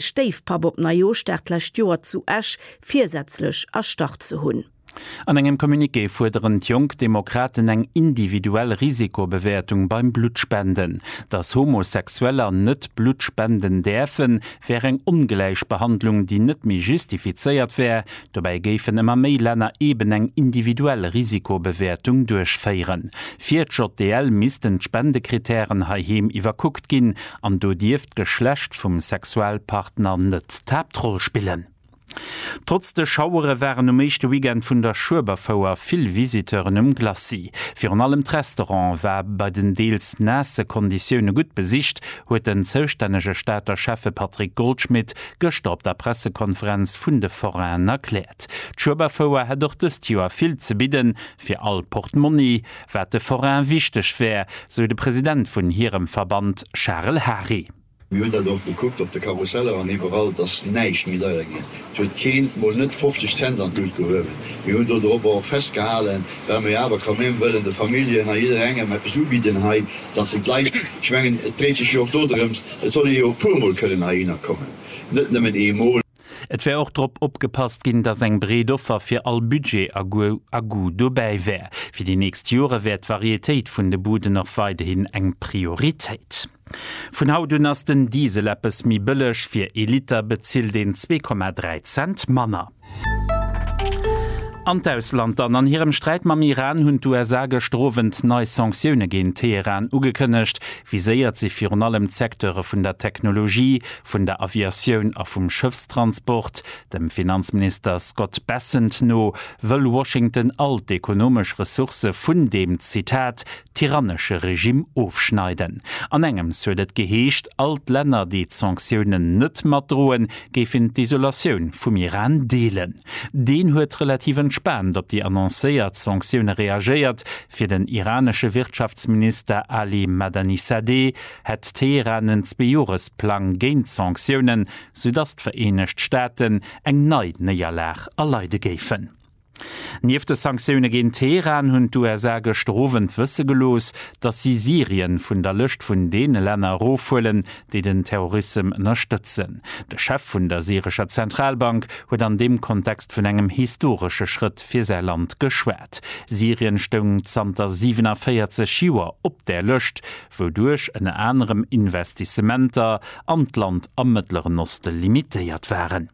Stéifpapp op Neijoerschdag d'lescht Joer zu Esch virsätzlech erstarrt ze hunn. An engem Communiqué fuerderen d'Jonk Demokraten eng individuell Risikobewäertung beim Bluttspenden. Datt Homosexueller net Blutt spenden däerfen, wär eng Ongläichbehandlung, déi net méi justifizéiert wär. Dobäi géifen ëmmer méi Länner eben eng individuell Risikobewäertung duerchféieren. Fir d'JDL missten d'Spendekrittären heiheem iwwerkuckt ginn. An do dierf d'Geschlecht vum Sexualpartner net d'Haaptroll spillen. Trotz de Schauere waren um éischte Weekend vun der Schueberfouer vill Visiteuren um Glacis. Virun allem d'Restaurant war bei den deels naasse Konditioune gutt besicht, huet den zoustännege Stater Schäffe Patrick Goldschmidt gëschter op der Pressekonferenz vun de Forainen erkläert. D'Schueberfouer hätt och dëst Joer vill ze bidden, fir all Portmonni. wat de Forain wichteg wär, sou de President vun hirem Verband Charel Hary. Mir hunn dat och gekuckt op de Karusseller an iwwerall, dass näischt méi deier ginn. Et huet keen, mol net 50 Cent an d'Lut gehuewen. Mir hunn do dorobber och festgehalen, well mer jo awer quand même wëllen de Familljen a jidderengem eppes ubidden hei, dass se d'Leit, ech mengen et dréit sech jo och dodrëms, et soll ee jo e puermol kënnen heihinner kommen, net nëmmen eemol. Et wär och drop opgepasst ginn, datt eng breet Offer fir all Budget a Goût dobäi wär. Fir déi nächst Jore wär d'Varietéit vun de Buden och weiderhin eng Prioritéit. Vun haut un ass den Diesel eppes méi bëlleg, fir ee Liter bezilt een zwee Komma dräi Cent manner. An d'Ausland dann, An hirem Sträit mam Iran hunn d'USA gëschter Owend nei Sanktioune géint Teheran ugekënnegt. Viséiert si virun allem d'Secteure vun der Technologie, vun der Aviatioun a vum Schëffstransport. Dem Finanzminister Scott Bessent no wëll Washington all d'ekonomesch Ressourcë vun deem, Zitat, tyrannesche Regimm ofschneiden. An engems huet et geheescht, all d'Länner, déi d'Sanktiounen net matdroen, géifen d'Isolatioun vum Iran deelen. Deen huet relativ entspaant op déi annoncéiert Sanktioune reagéiert, fir den iranesche Wirtschaftsminister Ali Madanisadeh, hätt Teheran en Zweejoresplang géint Sanktiounen, soudatt d'Vereenegt Staaten eng nei Néierlag erleide géifen. Nieft de Sanktioune géint Teheran hunn d'USA gëschter Owend wësse gelooss, datt si Syrien vun der Lëscht vun deene Länner erofhuelen, déi den Terrorissem ënnerstëtzen. De Chef vun der syrescher Zentralbank huet an deem Kontext vun engem historesche Schrëtt fir säi Land geschwat. Syrien stoung zanter 47 Joer op där Lëscht, wouduerch ënner anerem Investissementer an d'Land am Mëttleren Oste limitéiert waren.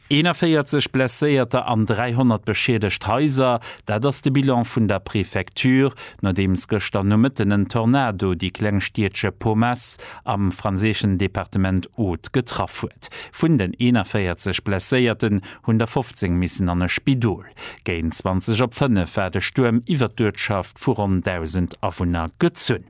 41 Blesséierter an 300 beschiedegt Haiser, dat ass de Bilan vun der Prefecture, nodeems gëschter Nomëtten en Tornado déi kleng Stiedche Pomace am franséischen Departement Aude getraff huet. Vun den 41 Blesséierten hunn der 15 missen an e Spidol. Géint 20 op 5 war de Stuerm iwwert d'Uertschaft vu ronn 1.000 Awunner gezunn.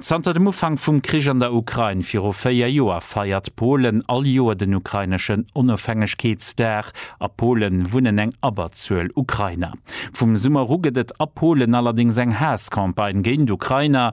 Zanter dem Ufank vum Krich an der Ukrain viru véier Joer feiert Polen all Joer den ukraineschen Onofhängegkeetsdag. A Pole wunnen eng Abberzuel Ukrainer. Vum Summer u gëtt et a Polen allerdéngs eng Haass-Campagne géint Ukrainer,